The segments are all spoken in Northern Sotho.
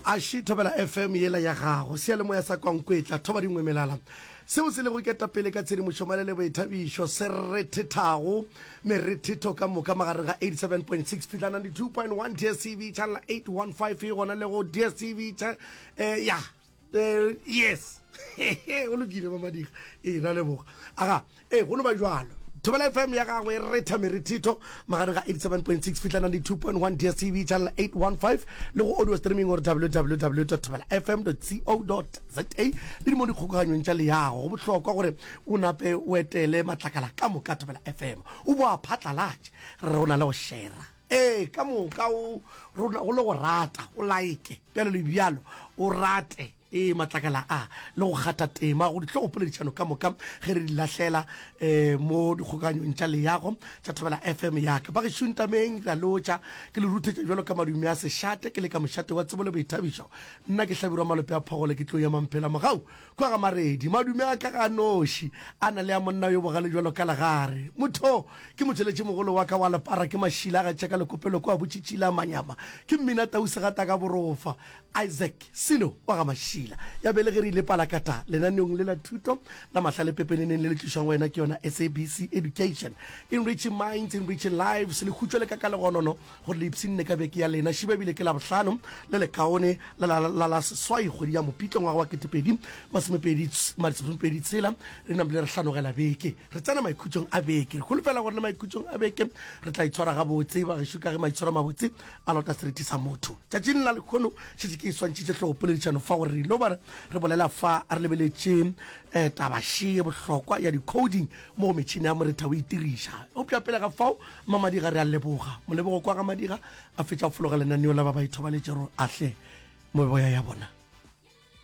aši thobela fm yela ya gago seyalemoya sa kwankwetla thoba dingwe melala seo se lego ketapele ka tshedimošo malele boithabišo se re thethago merethetho ka moka magareng ga 87.6 fihla 92.1 dstv channel 815 e gona le go dstv cha eh, ya There, yes o lokile mamadiga ee ra leboga aga ee go no ba jalo thobela fm ya gagwe retha merithitho magare ga 87.6 fihla 92.1 dstv channel 815 le go audio streaming gore www thobela fm co za le di mo dikgokaganyong tša leyago go bohlokwa gore o nape o etele matlakala ka moka thobela fm o boa phatlalatše re re o na le go shera Ee, ka moka o rona go le go rata, o laeke, bjalo le bjalo, o rate, ee, matlakala a, le go kgatha tema go dihlogopoledišano ka moka ge re di lahlela um mo dikgokaganyong tša leago tša Thobela FM ya ka. Bagešu ntameng, re a lotšha. Ke le ruthetša bjalo ka madumi a sešate, ke le ka mošate wa tsebo le boithabišo. Nna ke Hlabirwa Malope a Phogole, ke tlo ema mphela mogau Kua ga Maredi, madume a ka ga a noši, a na le a monna yo bogale bjalo ka legare. Motho! Ke motšweletšimogolo wa ka wa lepara, ke mašila a ga Tšeka Lekopelo kua Botšitšila, Manyama. Ke mmina tau segata ka borofa. Isaac, Sino, wa ga Mašila, ya belegeri Lepalakata, lenaneong le la thuto la mahlale pepeneneng le le tlišwago go wena ke yona SABC Education. Enriching minds, enriching lives, le hutšwe le ka ka legonono. go le ipshinne ka beke ya lena šiba ebile ke labohlano le lekaone la la la seswai kgwedi ya mopitlo ngwaga wa ketepedi masomepedi masomepedi tshela re namile re hlanogela beke re tsena maikhutšong a beke re kholofela gore le maikhutšong a beke re tla itshwara gabotse ba gešo ka ge maitshwaro mabotse a lota seriti sa motho tšatšing la lekgono šetse ke e swantšhitše tlogopoledišano fa gore re ilo ba re bolela fa re lebeletše um tabaše bohlokwa ya di-coding mo metšhini ya moretha o itiriša. Eupša pele ga fao, Mma Madiga re a leboga. Molebogo kwa ga Madiga a fetša go fologa lenaneo la ba ba ithobaletšego ahle meboya ya bona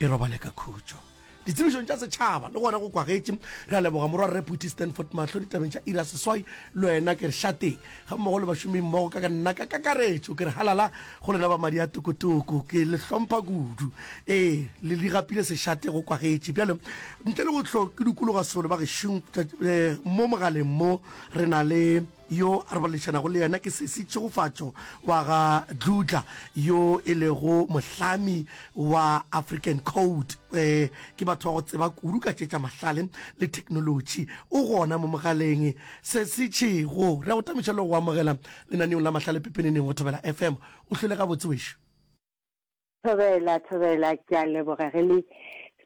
e robale ka khutšo ditsebišong tša setšhaba le gona go kwagetše. Re a leboga morwa Rre Phuthi Stanford Mahlo ditabeng tša iri ya seswai le wena ke re šateng. gammogo le bašomimmogo ka nna ka kakaretšo, ke re halala go lena ba madi a tokotoko. Ke le hlompha kudu. Ee, le di gapile sešate go kwagetše. Bjale, ntle le go hlo ke dukologa solo, ba gešong, mo mogaleng mo re na le yo a re boledišanago le yena, ke sesi Tšhegofatšo wa ga Dludla, yo e lego mohlami wa African Code. Ee, ke batho ba go tseba kudu ka tše tša mahlale le theknolotši. O gona mo mogaleng. Se se tšego, re a go tametša le go go amogela lenaneong la mahlale pepeneneng go Thobela FM. O hlwele gabotse wešo. Thobela, Thobela, ke a leboga ge le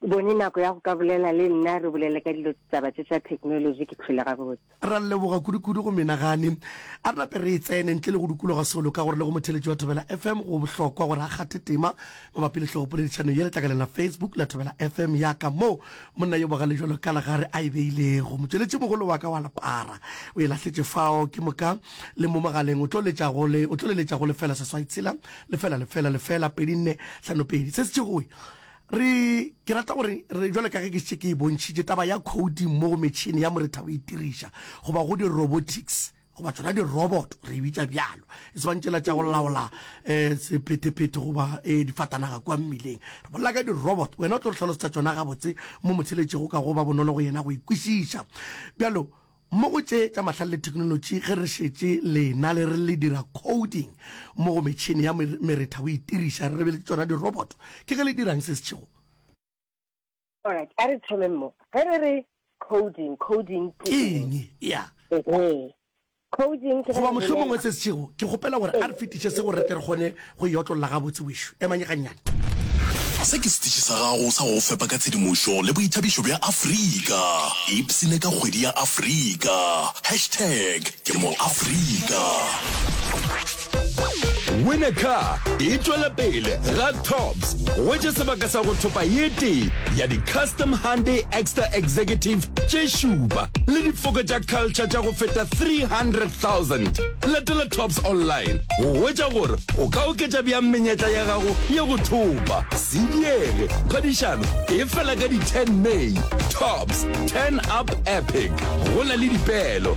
bone nako ya go ka bolela le nna re bolele ka dilo taba tše tša technology. Ke hlwele gabotse. Ra leboga kudu-kudu go menagane. A re nape re e tsene ntle le go dukologa solo ka gore le go motheletši wa Thobela FM go bohlokwa gore a kgathe tema mabapi le hlogopoledišano ye letlakaleng la Facebook la Thobela FM. Ya ka mo Monna yo bogale bjalo ka legare a e beilego. Motšweletšimogolo wa ka wa lepara o e lahletše fao, ke moka le mo mogaleng. O tlo letša go le, o tlo le letša go lefela seswai tshela, lefela, lefela, lefela, pedi, nne, hlano, pedi. Se se tšegoe. Re, ke rata gore re, bjalo ka ge ke šetše ke e bontšhitše, taba ya khouting mo go metšhene ya moretha go e tiriša, goba go di-robotics. goba tsona di-robot re bitsa bjalo e swantšela tša go laola um eh, sephetephete goba um difatanaga kwa mmileng re bolela ka di-robot wena o tlo re tlhalosetsa tsona gabotse mo motsheletšego ka go ba bonolo go yena go ikwešiša bjalo mo go tše tša mahlale le thekenolotši ge re šetše lena le re le dira coding mo go metšhini ya meretha o itiriša re lebeletse tsona di-robot ke ge le dirang se setšhego Alright, a re thomeng mo. Ge re re coding, coding ke ke eng? eng ya Ehe. Coding ke ge goba re mohlomongwe bolela. se se tšhego ke kgopela gore a re fetiše se gore re tle re kgone go e otlolola gabotse wešo emanye gannyane Se ke setiši sa gago sa go go fepa ka tshedimošo le boithabišo bja Afrika. Ipsine ka kgwedi ya Afrika. Hashtag ke mo Afrika. Win a Car e tšwela pele ga Tops go wetše sebaka sa go thopa ye tee ya di-custom Hyundai Extra Executive tše šupa le difoko tša culture tša go feta 300,000. Latela Tops online go wetša gore o ka oketša bjang menyetla ya gago ya go thopa. Se diege, phadišano e fela ka di-10 May. Tops, turn up epic. Go na le dipeelo.